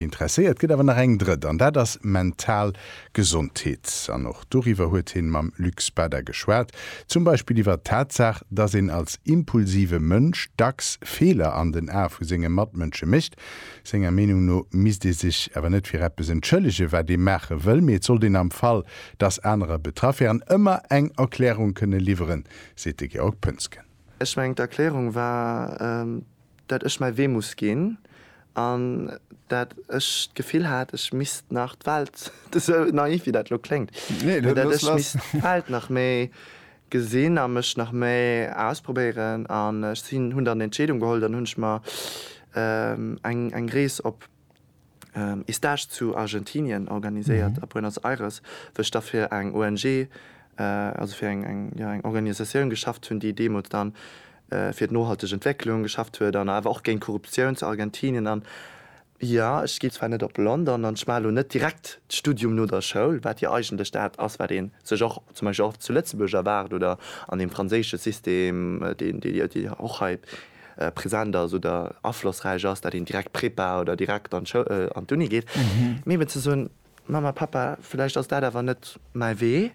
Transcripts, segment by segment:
Interesséiert gëtt awer nach eng drëtt, an dat ass mental Gesondheet. An och doriwwer huet hien mam Luc Spada geschwat, zum Beispill iwwer d'Tatsaach, dass een als impulsive Mënsch dacks Feeler an den Ae vu senge Matmënsche mécht. Senger Meenung no misst ee sech awer net fir eppes entschëllegen, wat ee maache wëll, mee et sollt een am Fall, dass anerer betraff wären, ëmmer eng Erklärung kënne liwweren, seet de Georg Poensgen. Ech mengen d'Erklärung war. dat ech mäi Wee muss ginn an dat ech d'Gefill hat, ech misst nach d'Welt, esou naiv wéi dat elo kléngt, mee dat ech misst d'Welt nach méi gesinn a mech nach méi ausprobéieren. An ech sinn, hunn dann d'Entscheedung geholl, dann hunn ech mer eng Rees op. Estage zu Argentinien organiséiert a Buenos Aires, wou ech da fir eng ONG, also fir eng Organisatioun geschafft hunn, déi deemools da fir d'nohalteg Entwécklung geschafft huet an awer och géint Korruptioun zu Argentinien. An jo, ech ginn zwar net op London an ech maachen elo net direkt d'Studium no der Schoul, wat jo eigentlech dat ass, wat ee sech och zum Beispill och zu Lëtzebuerg erwaart oder an deem franséische System, deen jo och hei present ass oder aflossräich ass, dat een direkt Prépa oder direkt an d'Schou an d'Uni geet, mee eben ze soen, Mamma, Pappa, vläicht ass dat awer net mäi Wee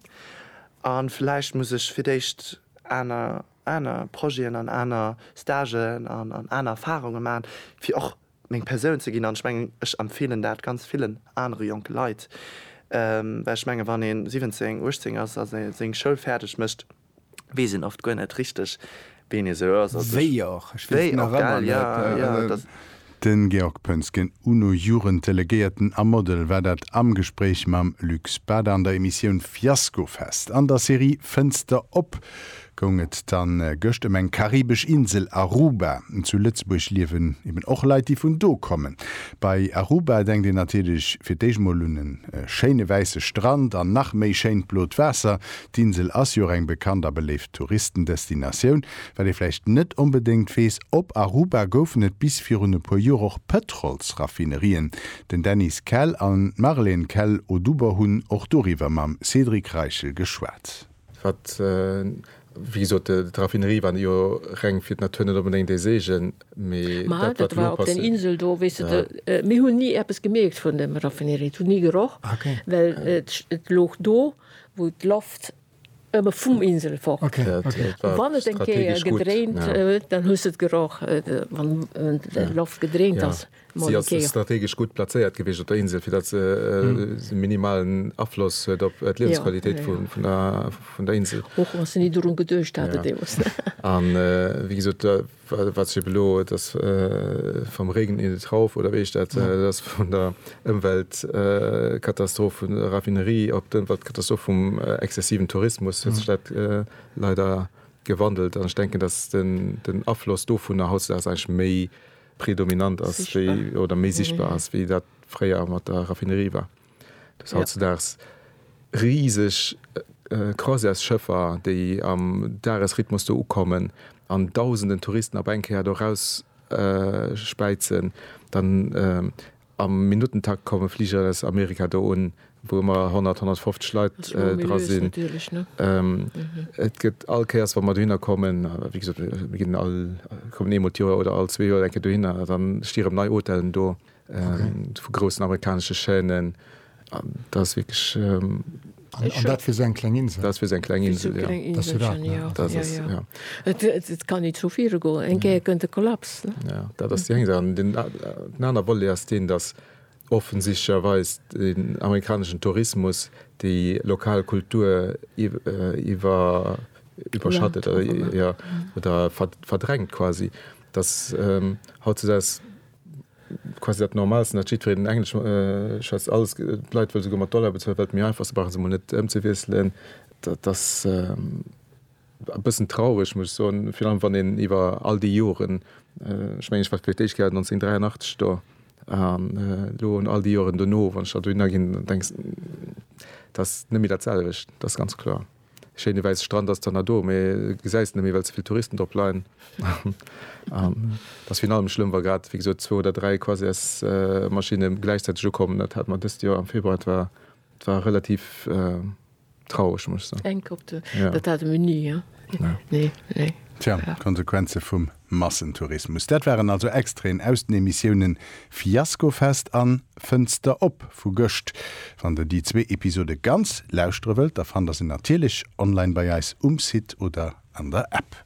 a vläicht muss ech fir d'éischt aner aner Projeten an aner Stagen an an aner Erfarunge maachen, fir och meng Persoun ze ginn. An ech mengen, ech empfeelen dat ganz villen anere jonke Leit, well ech menge wann ee 17, 18 ass a seng Schoul fäerdeg mécht, wees een oft guer net richteg ween ee sou ass. Wéi och, ech wees nach emmer net. Den Georg Pönsgen, UNO-Jugenddelegéierten a Model war dat am Gespréich mam Luc Spada an der Emissioun Fiaskofest. An der Serie Fënster op goung et dann gëscht ëm eng karibesch Insel, Aruba. Zu Lëtzebuerg liewen eben och Leit déi vun do kommen. Bei Aruba denkt een natierlech fir d'éischt mol un e schéine wäisse Strand an nach méi schéint blot Waasser. D'Insel ass jo och eng bekannt a beléift Touristendestinatioun. Wat ee vläicht net onbedéngt weess, Op Aruba goufen et bis virun e puer Joer och Pëtrolsraffinerien. Den Dennis Kell an d'Marlène Kell-Oduber hunn och doriwwer mam Cédric Reichel geschwat. Wat, wéi gesot, d'Raffinerie war jo reng fir d'Natur net onbedéngt ee Seegen, mee dat, wat elo passéiert. wou d'Loft ëmme vum Insel fort kënnt. A wann et eng Kéier gedréint huet, dann hues de et geroch, wann d'Loft gedréint ass. Si ass strategesch gutt plazéiert gewiescht op der Insel, fir datt se e minimalen Afloss huet op d'Liewensqualitéit vun der Insel. Och wa se ni dorun geduecht haten deemools. A wéi gesot, Wat sip elo, et ass vom Regen in den Trauf, oder wéi heescht dat? Et ass vun der Ëmweltkatastroph vun der Raffinerie op d'Ëmweltkatastroph vum exzessiven Tourismus huet sech dat leider gewandelt. An ech denken, datt den Afloss dovunner hautdesdaags eigentlech méi predominant ass wéi, oder méi sichtbar ass, wéi dat fréier mat der Raffinerie war. Dass hautzedaags riseg Croisièresschëffer, déi am Dagesrhythmus do ukommen an dausenden Touristen op eng Kéier do erausspäizen, dann am Minuttentakt komme Fliger aus Amerika do un, wou ëmmer 100, 150 Leit dra sinn. Et gëtt all Kéiers, wa mer dohinner kommen, wéi gesot, mir kommen eemol d'Joer oder all zwee Joer eng Kéier dohinner, da sti rëm nei Hotellen do. vu groussen amerikanesche Chaînen, an dat ass wierklech. An dat fir esou eng kleng Insel? Dat ass fir esou eng kleng Insel, jo. Dat ass jo dat, ne? Dat ass dat, jo. Et kann ni zu viru goen, eng Kéier kënnt e Kollaps, ne? Jo, dat ass déi eng Saach. An den anere Volet ass deen, datt offensichtlecherweis den amerikaneschen Tourismus déi lokal Kultur iwwerschattet, jo, oder verdrängt quasi, datt hautzudeis quasi dat Normalsten, datt jiddwereen Englesch schwätzt, alles, d'Leit wëlle souguer mat Dollar bezuelen, well et méi einfach ass, se brauche se emol net ëmzewiesselen. Dat ass e bëssen traureg, muss ech soen, virun allem wann een iwwer all déi Joren, ech mengen, ech war vläicht déi éischt Kéier 1983 do, an elo an all déi Joren dono, wann ech da dohinner ginn, denkst, dat ass net méi dat selwecht, dat ass ganz kloer. Schéine wäisse Strand ass dann nach do, mee gesäis en net méi, well ze vill Touristen drop leien. Et ass virun allem schlëmm, wa grad, wéi gesot, zwou oder dräi Croisièresmaschinne gläichzäiteg ukommen. Dat hat mer dëst Joer am Februar, et war, et war relativ traureg, muss ech soen. Eng Kopter, dat hate mir ni, jo. Nee, nee. Tja, d'Konsequenze vum Massentourismus, dat waren also Extraiten aus den Emissiounen Fiaskofest an Fënster op vu gëscht. Wann der déi zwee Episode ganz lauschtere wëllt, da fannt der se natierlech online bei eis um Site oder an der App.